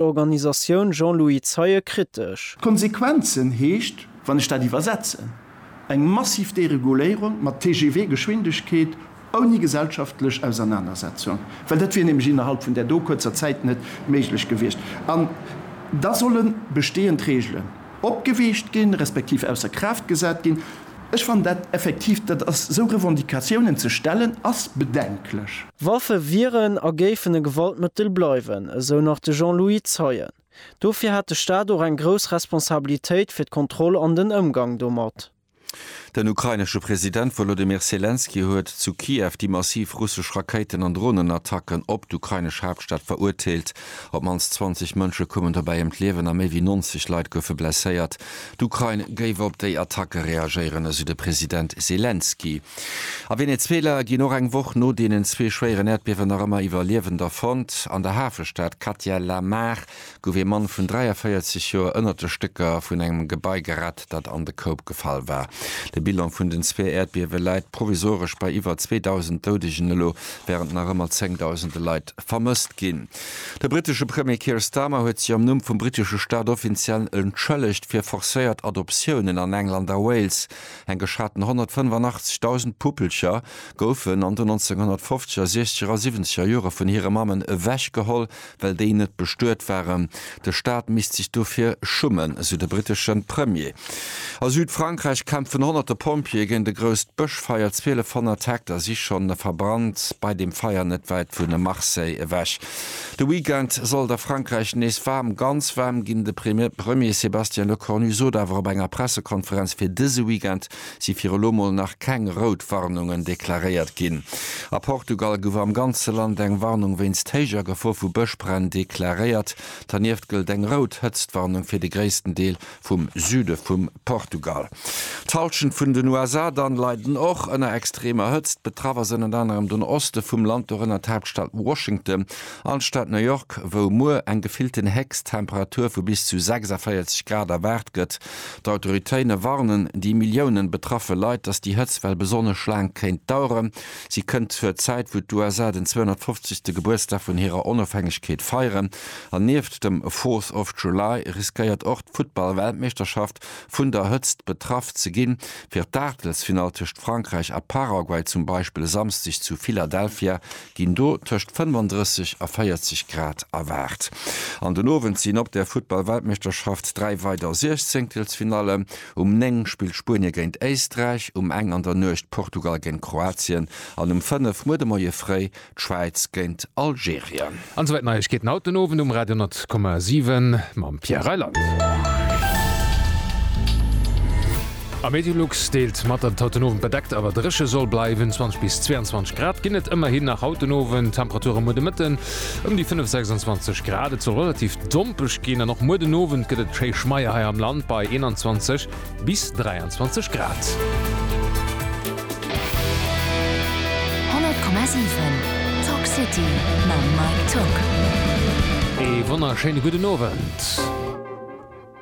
Organisatioun Jean-Louis Zeie kritesch. D'Konsequenzen heescht, wann ech dat iwwersetzen, eng massiv Dereguléierung mat TGV-Geschwindegkeet ouni gesellschaftlech Ausernanersetzung, well dat wier nämlech innerhalb vun där do kuerzer Zäit net méiglech gewiescht. An da solle bestehend Regelen opgeweecht ginn, respektiv ausser Kraaft gesat ginn. Ech fannen dat effektiv, dat ass, esou Revendicatiounen ze stellen, ass bedenklech. Waffe wieren a géifen e Gewaltmëttel bleiwen, esou nach de Jean-Louis Zeien. Dofir hätt de Staat och eng grouss Responsabilitéit fir d'Kontroll an den Ëmgang domat. Den ukrainesche President Wolodymyr Selenskyj huet zu Kiew déi massiv russesch Rakéiten an Dronenattacken op d'ukrainesch Haaptstad verurteelt. Op d'mannst 20 Mënsche koumen dobäi ëm d'Liewen a méi wéi 90 Leit goufe blesséiert. D'Ukrain géif op déi Attacke reagéieren, esou de President Selenskyj. A Venezuela ginn och eng Woch no deenen zwee schwéieren Äerdbiewen nach ëmmer Iwwerliewender fonnt. An der Hafestad Catia la Mar gouf ee Mann vun 43 Joer ënnert de Stécker vun engem Gebai gerett. dat an de Koup gefall war. De Bilan vun den zwee Äerdbiewe läit provisoresch bei iwwer 2.000 Doudegen elo, wärend nach ëmmer zéngdausende Leit vermësst ginn. De brittesche Premier Keir Starmer huet sech am Numm vum brittesche Staat offiziell entschëllegt fir forcéiert Adoptiounen an England a Wales. Eng geschaten 185.000 Puppelcher goufen an den 1950er, 60er a 70er Jore vun hire Mammen ewechgeholl, well déi net bestuet waren. De Staat misst sech dofir schummen, esou de brittesche Premier. A Südfrankräich kämpfen honnerte Pompjeeë géint e grousst Bëschfeier. 1200 Hektar si schonn verbrannt bei deem Feier net wäit vu Marseille ewech. De Weekend soll et a Frankräich nees waarm, ganz waarm ginn. De Premier Sébastien Lecornu sot awer op enger Pressekonferenz, fir dëse Weekend si fir elo mol nach keng rout Warnungen deklaréiert ginn. A Portugal gouf am ganze Land eng Warnung wéinst héijer Gefor vu Bëschbränn deklaréiert. Dernieft gëllt eng rout Hëtztwarnung fir de gréissten Deel vum Süde vum Portugal. D'Hallschent vun den USA dann leiden och ënner extremer Hëtzt. Betraff ass ënnert anerem den Oste vum Land, dorënner d'Haaptstad Washington an d'Stad New York, wou muer eng gefillten Héchsttemperatur vu bis zu 46 Grad erwaart gëtt. D'Autoritéine warnen déi Millioune betraffe Leit, datt déi Hëtztwell besonnesch laang kéint daueren. Si kënnt zur Zäit, wou d'USA den 250. Gebuertsdag vun hirer Onofhängegkeet feieren. An nieft dem Fourth of July riskéiert och d'Futtball-Weltmeeschterschaft vun der Hëtzt betraff ze ginn. Fir d'Aachtelsfinall tëscht Frankräich a Paraguay zum Beispill e Samsdeg zu Philadelphia ginn do tëscht 35 a 40 Grad erwaart an den Owend sinn op der Futtballweltmeeschterschaft dräi weider Siechzéngtelsfinallen. Um 9 spillt Spuenie géint Éisträich, um eng an der Nuecht Portugal géint Kroatien an um 5 muer de Moie fréi d'Schwäiz géint Algerien. An esouwäit Neiegkeeten haut den Owend um Radio 100,7 mam Pierre Reyland. A Meteolux deelt mat, datt et haut den Owend bedeckt awer dréche soll bleiwen, 20 bis 22 Grad ginn et ëmmerhin nach haut den Owend. Temperature muer de Mëtten ëm déi 5, 26 Grad. Et soll relativ dompeg ginn an och muer den Owend gëtt et schéi Schmeier hei am Land bei 21 bis 23 Grad. Ee wonnerschéine gudden Owend.